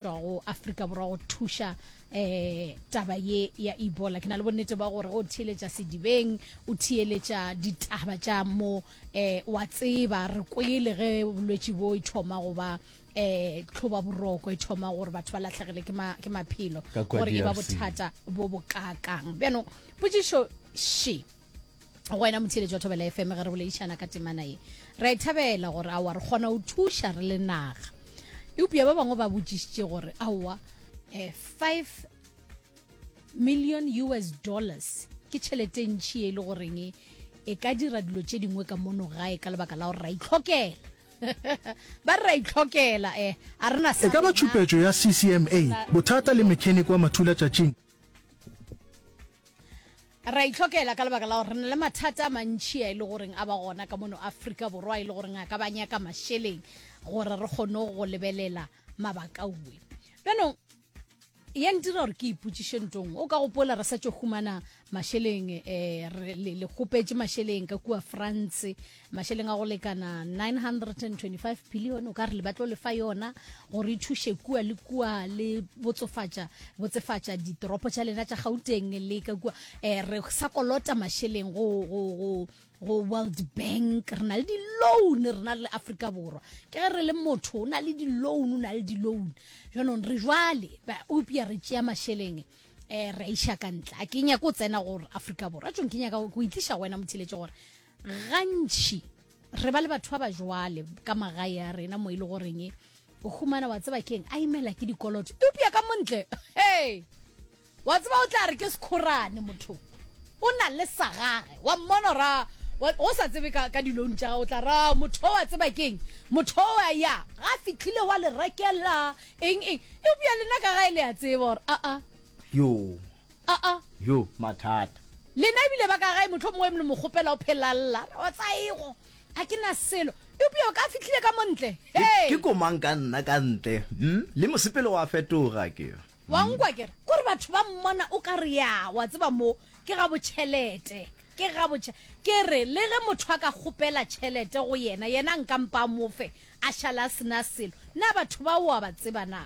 tšwa go Afrika Borwa go thuša eh taba ye ya Ebola ke na le bonnete ba gore o theeletša sedibeng o theeletša ditaba tša mo eh wa tseba re kwele ge bolwetši bo e thoma go ba eh tlhoba boroko e thoma gore batho ba latlhegele ke ma ke maphelo Ka kwa gore e ba DRC. bothata bo bo kakang bjanong potšišo she go wena motheletši wa thobela fm ge re boledišana ka temana ye ra e thabela gore aowa re kgona go thuša re le naga eupša ba bangwe ba botšišitše gore aowa eh, five million us dollars ke tšhelete e ntšhi e le goreng e, e ka dira dilo tše dingwe ka mono gae ka lebaka la gore ra itlhokela ba re ra itlhokela um eh, a rena e ka ba tšhupetšo ya ccma bothata le mechanic wa mathulatšatšing Re a itlhokela ka lebaka la gore re na le mathata a mantši a e le goreng a ba gona ka mono Afrika Borwa a e le goreng a ka ba nyaka mašeleng gore re kgone go lebelela mabakauwe. Bjanong, ya ntira gore ke ipotšiše ntong, o ka gopola re sa tšo humana mašeleng, um re le kgopetše mašeleng ka kua France, mašeleng a go lekana 925 billion o ka re le batlo le fa yona gore e thuše kua le kua le botsofatša botsefatša ditoropo tša lena tša gauteng le ka kua eh, re sa kolota mašeleng go, go, go, go world bank re na le di-loan re na le afrika borwa ke ge re le motho o na le di-loan o na le di-loan jaanong re jwale ba opia re tšea mašeleng um re a iša ka ntle a ke nyako o tsena gore afrika borwa a tsong ke nyaka go itliša wena mothiletše gore gantši re ba le batho ba ba jwale ka magae ya rena mo e le goreng o humana wa tseba keng a imela ke dikoloto eupša ka montle hey wa tseba o tla re ke sekgorane motho o na le sa gage wa mmona ra o sa tsebe ka, ka dilone tša o tla ra motho wa tseba keng motho wa ya ga fitlhile wa le rekela eng eng eupša lena ka gae le a tseba gore aa yo A-a. Yo, mathata. Lena e bile ba ka gae, mohlomongwe mlo mo kgopela o phelalla. A re, O tsa ego, ga ke na selo. Eupša o ka fihlile ka mo ntle. Ke, Hei! ke komang ka nna ka ntle, hm? Le mosepelo wa fetoga, ke. Wa nkwa, ke re. Kore batho ba mmona o ka re ya, wa tseba, mo, ke ga botšhelete. Ke ga botšhe. Ke re, le ge motho a ka kgopela tšhelete go yena, yena a nka mpa a mo fe, a šale a se na selo. Na batho bao o a ba tseba na?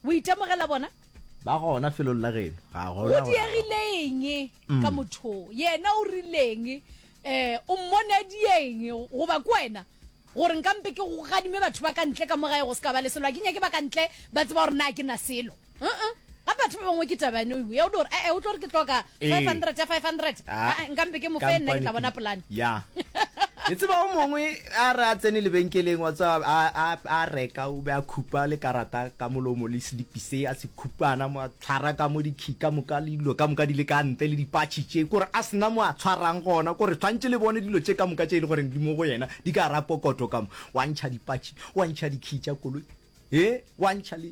O itemogela bona? Ba gona felong la geno. Ga gona. O diegileng mm. ka motho yena o rileng eh o mmone a dieng go ba kwena gore nka mpe ke go gadime batho ba ka ntle ka mo gae go se ka ba le selo a ke nyake ba ka ntle ba tseba gore na ke na selo uh-uh. gape batho ba bangwe ke tabane ya o di gore ee o tlo gore ke tloka 500 ya 500 Ah. Ah, nka mpe ke mo fe nna ke tla bona polane ya e tseba o mongwe a re a tsene lebenkeleng wa tswa a, a, a reka o be a khupa le karata ka molomo le selipi se a se khupana mo a tshwara ka mo dikhi ka moka le dilo ka moka di le ka ntle le dipatšhi tše kore a sena mo a tshwarang gona kore tshwantše le bone dilo tše ka moka tše e le goreng di mo go yena di ka ra pokoto ka mo wa ntšha dipatšhi wa ntšha dikhi tša koloi e wa ntšha le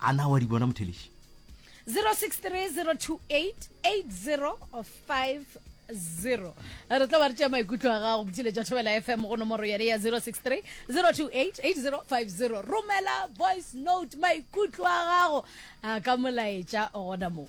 a na wa di bona motheleši 0630288050 zero re tla ba re tšea maikutlo a gago botšile jwa thobela fm go nomoro yone ya 063 028 romela voice note maikutlo a gago a ka molaetša gona moo